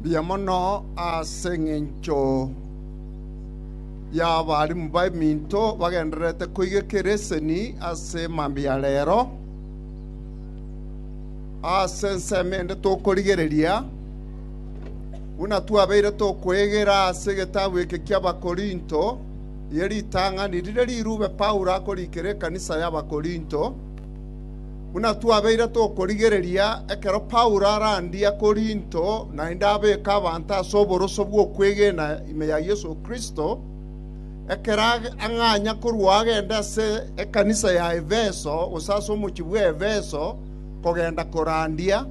Mbuya mono ase engencho y'abarimu b'eminto bagendererete koigeka ereseni ase mambia ya rero. Ase ensemo ende tokorigereria buna twabeire tokwegera ase egetabu eke ki'Abakorinto, eye ritang'ani rire rirube Paulo akorikera ekanisa y'Abakorinto, Buna twabeire tokorigereria, ekero Paulo arandia Korinto naende abeeka abanto ase oboroso bw'okwegena ime ya Yeso Kristo, ekero ang'anya korwa agende ase ekanisa ya Efeso, gose ase omochie bw'Efeso, kogenda korandia,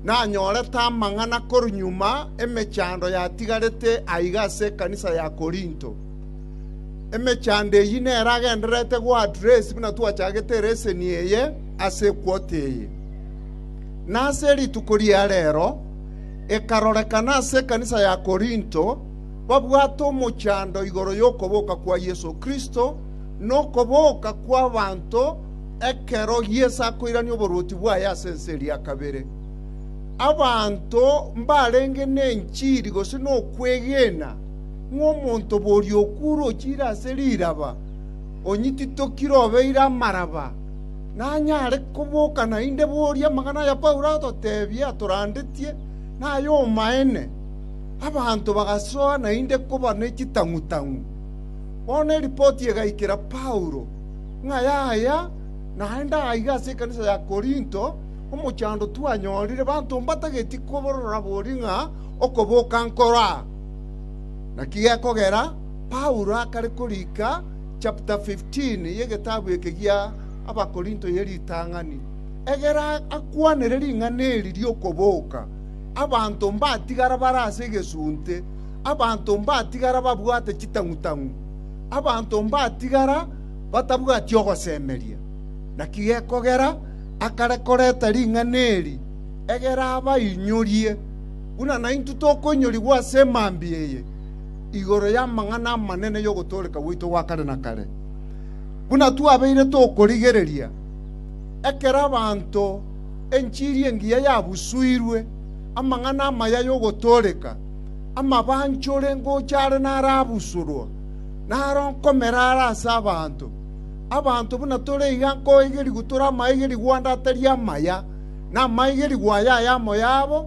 nanyorete amang'ana korwa nyuma emechando yatigarete aiga ase ekanisa ya Korinto. Emechando eyio nero agendererete goadress buna twachagete leseni eye ase equote eye. Na ase rituko ria rero ekarorekana ase ekanisa ya Korinto babwate omochando igoro y'okoboka kwa Yeso Kristo na okoboka kw'abanto ekero Yeso akoirania oboruoti bwaye ase ense eria kabere. Abanto mbarenge nenchiri gose nokwegena ng'a omonto boria okuure ochiire ase riraba onyititokire obeire amaraba, nanyare koboka naende boria amang'ana aya Paulo atotebia atorandetie nay'omaene. Abanto bagasoa naende koba ne chitang'u-tang'u. Bono eripoti egaikera Paulo, ng'a yaya naende aiga ase ekanisa ya Korinto, Omochando twanyorire banto mbatageti koborora boria ng'a okoboka nkoro aa. Naki gekogera, Paulo akare korika chapter 15 y'egetabu eke gia Abakorinto ye ritang'ani, egere akwanere ring'ana eri ri'okoboka. Abanto mbatigara bare ase egesunte, abanto mbatigara babwate chitang'u-tang'u, abanto mbatigara batabwati ogosemeria. Naki gekogera akare koreta ring'ana eri, egere abainyorie. Buna naintwe tokoinyorigwa ase mambia eye igoro y'amang'ana amanene y'ogotooreka gwaito gwa kare na kare, buna twabeire tokorigereria, ekero abanto enchiri engiya yabusuirwe, amang'ana amaya y'ogotooreka, amabanchore ngocha are narabusurwa, naro nkomera are ase abanto. Abanto buna tore iga nkoigerigwa tore amaigerigwa ande atari amaya, na amaigerigwa aya ayamo yabo,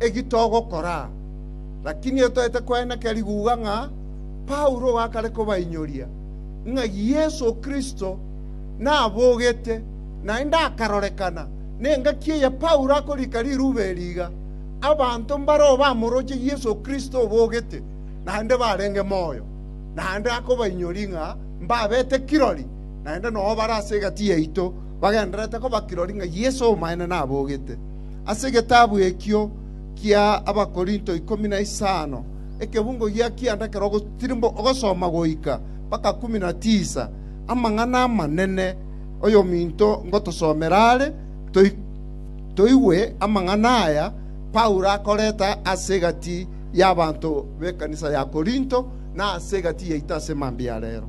eki togokora, lakini etoete koeneka riguga ng'a Paulo gakare kobainyoria ng'a Yeso Kristo nabogete, naende akarorekana nengaki eye Paulo akorika riruba eri iga, abanto mbareo bamoroche Yeso Kristo obogete, naende barenge moyo. Naende akobainyoria ng'a mbabete kirori, naende nao bare ase egati yaito bagendererete koba kirori ng'a Yeso omoene nabogete. Ase egetabu ekio kia Abakorinto ikomi na isano, ekebungo gia kianda ekero ogotirimu ogosoma goika mpaka kumi na tisa, amang'ana amanene oyominto ngotosomera are, toi- toigwe amang'ana aya Paulo akoreta ase egati y'abanto b'ekanisa ya Korinto, na ase egati yaito ase mambia ya reero.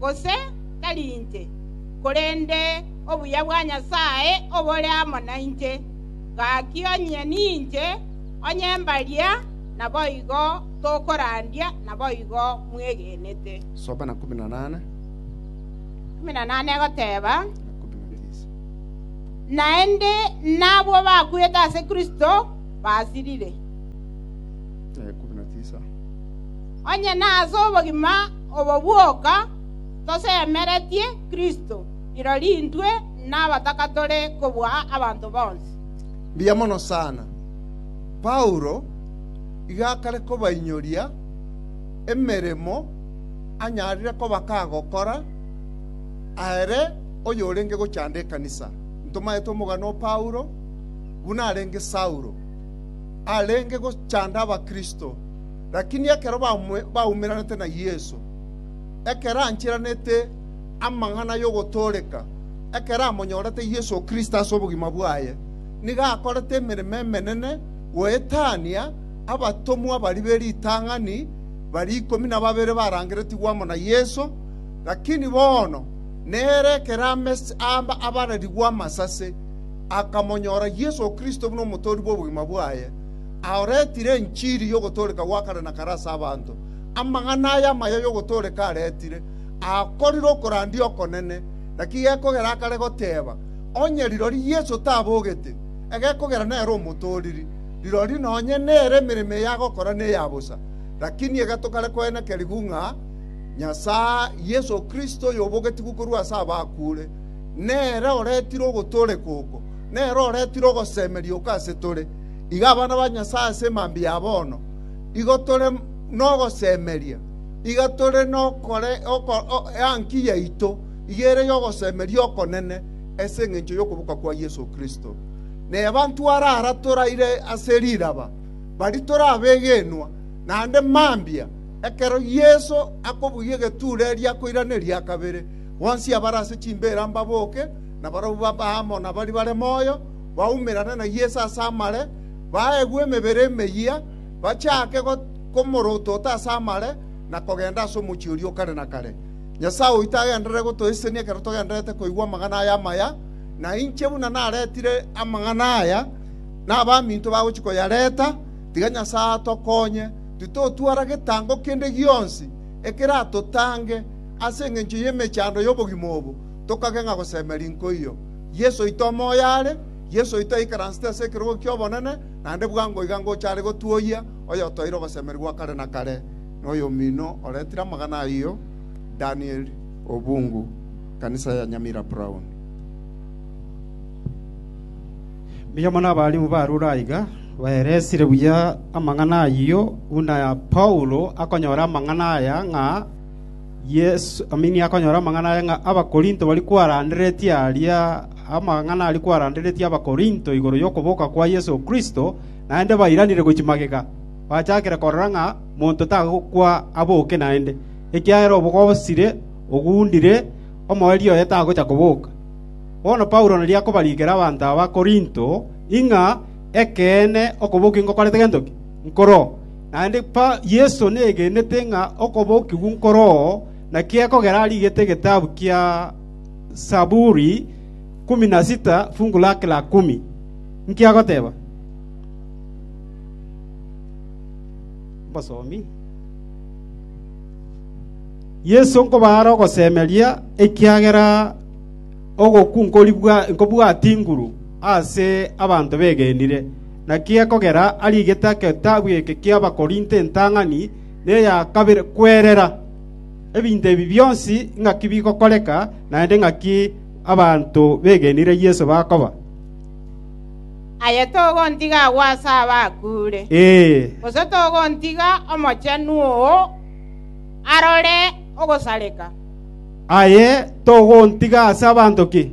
gose tari inche, korende obuya bwa Nyasae obore amo nainche. Gaki onye ninche, onye mbaria, naboigo tokorandia, naboigo mwegenete. Egoteba, Naende nabwo bakwete ase Kristo basirire, onye nase obogima Obo bwoka tosemeretie Kristo, rirorio intwe nabataka tore kobua abanto bonsi. Mbuya mono sana. Paulo iga akare kobainyoria emeremo anyarire koba kagokora ere oyorenge gochanda ekanisa. Ntomaete omogano o Paulo buna arenge Saulo, arenge gochanda Abakristo. Lakini ekero baumererete na Yeso, ekero ancheranete amang'ana y'ogotooreka, ekero amonyorete Yeso Kristo ase obogima bwaye, nigo akorete emeremo emenene goetania abatomwa baria be ritang'ani baria ikomi na babere barangeretigwe amo na Yeso, lakini bono nere ekero abarerigwe amasase, akamonyora Yeso Kristo buna omotoori bw'obogima bwaye. aoretire enchiri y'ogotooreka gwa kare na kare ase abanto. Amang'ana aya amaya y'ogotooreka aretire, akorire okorandia okonene, naki gekogera akare goteeba, Onye rirorio Yeso tabogete, egekogera nere omotooriri, rirorio nonye nere emeremo eye agokora neya bosa. Lakini iga tokare koenekerigwa ng'a Nyasae, Yeso Kristo oyobogetigwe korwa ase abakure, nere oretire ogotooreka oko, nere oretire ogosemeria oko ase tore. Iga abana ba Nyasae ase mambia ya bono, igo tore nogosemeria, iga tore nokore oko enki yaito iga ere y'ogosemeria okonene ase engencho y'okoboka kwa Yeso Kristo. Nebanto arara toraire ase riraba, bari torabegenwa, naende mambia, ekero Yeso akobugia egetuura eria akoirana eria kabere, bonsi abare ase chimbeera mbaboke, na barabwo babe amo nabari bare moyo, baumerane na Yeso ase amare, baegwe emebere emeyia, bachaake go- komorotota ase amare, na kogenda ase omochie oria o kare na kare. Nyasae oito agenderere gotoisesenia ekero togendererete koigwa amang'ana aya amaya, na inche buna naretire amang'ana aya, na abaminto bagochia koyareta, tiga Nyasae atokonye, titotwara getango kende gionsi ekeratotange ase engencho y'emechando y'obogima obo, tokageng'a gosemeria nkoiyo. Yeso oito omoyo are, Yeso oito aikaransete ase ekerogo ki'obonene, naende bwango iga ngocha are gotuoyia, oyotoeire obosemeria bwa kare na kare, na oyomino oretire amang'ana ayio, Daniel Obungu, Ekanisa ya Nyamira Brown. Mbuya mono abarimu barure aiga baeresire buya amang'ana ayio, buna Paulo akonyora amang'ana aya ng'a, Yeso aminia akonyora amang'ana aya ng'a Abakorinto baria kwaranderetie aria, amang'ana aria kwaranderetie Abakorinto igoro y'okoboka kwa Yeso Kristo, naende bairanire gochia magega, bachakire korora ng'a monto tagokwa aboke naende, ekiagera obogosire oguundire omoerio oye tagocha koboka. Bono Paulo nario akobarikera abanto aba Korinto, ing'a, Ekeene, okobokia ingokorete gento ki? Nkoro? Naende Yeso negenete ng'a okobokigwa nkoro oo, naki ekogera arigete egetabu kia Zaburi ikomi na sita fungu lake la ikomi. Inki agoteba? Yeso nkobaare ogosemeria, ekiagera ogokwa nkobwati inguru ase abanto begenire. Naki ekogera arigete egetabu eke ki'Abakorinto entang'ani neya kabere kwerera, ebinto ebi bionsi ng'aki bigokoreka, naende ng'aki abanto begenire Yeso bakoba. “Aye togontiga agwo ase abakuure, gose togontiga Omochenu oo arore ogosareka.” Aye togontiga ase abanto ki?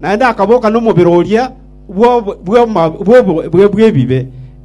naende akaboka nomobere oria bw'ebibe.